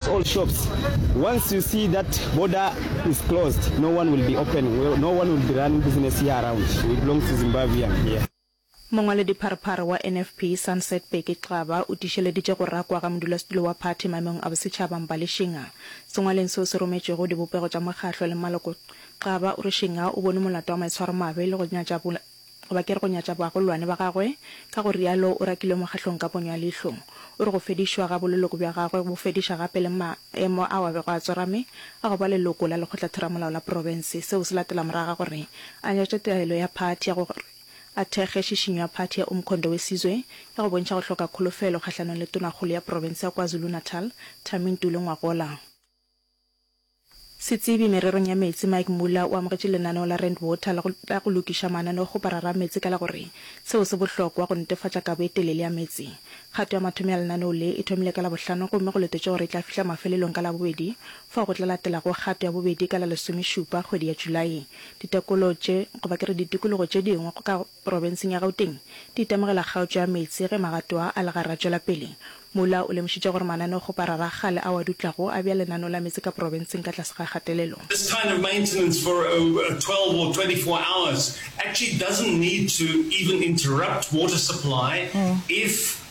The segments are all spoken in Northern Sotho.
all shops once you see that border is closed no one will be open no one will be running business here around we belong to Zimbabwean here. Mongwaledipharphar wa NFP, Sunset Bheki Xaba, o tiišeleditše go rakwa ga modulasetulo wa phathi maemong a bosetšhaba Mbali Shinga. Sengwalweng seo se rometšwego dibopego tša mokgahlo le maloko, Xaba o re Shinga o bone molato wa maitshwaromabe le go nyatša goba ke re go nyatša bagolwane ba gagwe, ka go realo o rakilwe mokgahlong ka ponyo ya leihlo. O re go fedišwa ga boleloko bja gagwe bo fediša gape le maemo ao a bego a tsorame a go ba leloko la Lekgotla-Theramolao la Profense, seo se latela morago ga gore a nyatše taelo ya phathi ya gore a thekge šišinyo ya phathi ya Umkhondo Wesizwe ya go bontšha go hloka kholofelo kgahlanong le Tonakgolo ya Profense ya KwaZulu-Natal, Thami Ntuli Ngwagola. Setsebi mererong ya meetse Mike Muller o amogetše lenaneo la Rand Water la go, la go lokiša mananeo go parara meetse ka la go re, Seo se bohlokwa go netefatša kabo e telele ya meetse. Kgato ya mathomo ya lenaneo le e thomile ka Labohlano gomme go letetšwe gore e tla fihla mafelelong ka Labobedi fao go tla latelago kgato ya bobedi ka la lesomešupa kgwedi ya Julae. Ditekolo tše, goba ke re ditikologo tše dingwe go ka Profenseng ya Gauteng, di itemogela kgaotšo ya meetse ge magato a a legare a tšwela pele. Muller o lemošitše gore mananeo go parara a kgale ao a dutlago a bea lenaneo la meetse ka profenseng ka tlase ga kgatelelo. This kind of maintenance for a twelve or twenty four hours actually doesn't need to even interrupt water supply if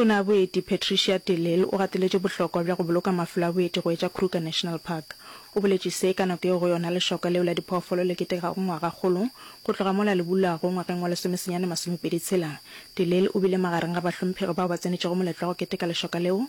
Tona Boeti Patricia de Lille o gateletše bohlokwa bja go boloka mafelo a boeti go etša Kruger National Park. O boletše se ka nako yeo go yona lešoka leo la diphoofolo le ketegago ngwagakgolo go tloga mola le bulwago ngwageng wa lesomesenyane masomepedi tshela. De Lille o bile magareng ga bahlomphegi bao ba tsenetšego moletlo wa go keteka lešoka leo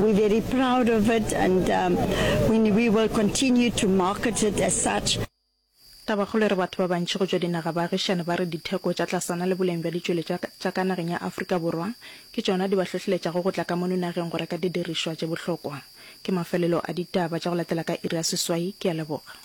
We're very proud of it and um, we, we will continue to market it as such. Tabakgolo e re batho ba bantši go tšwa dinaga baagišani ba re ditheko tša tlasana le boleng bja ditšweletšwa tša ka nageng ya Afrika Borwa ke tšona di ba hlohleletšago go tla ka mono nageng go reka didirišwa tše bohlokwa. Ke mafelelo a ditaba tša go latela ka iri ya seswai. Ke a leboga.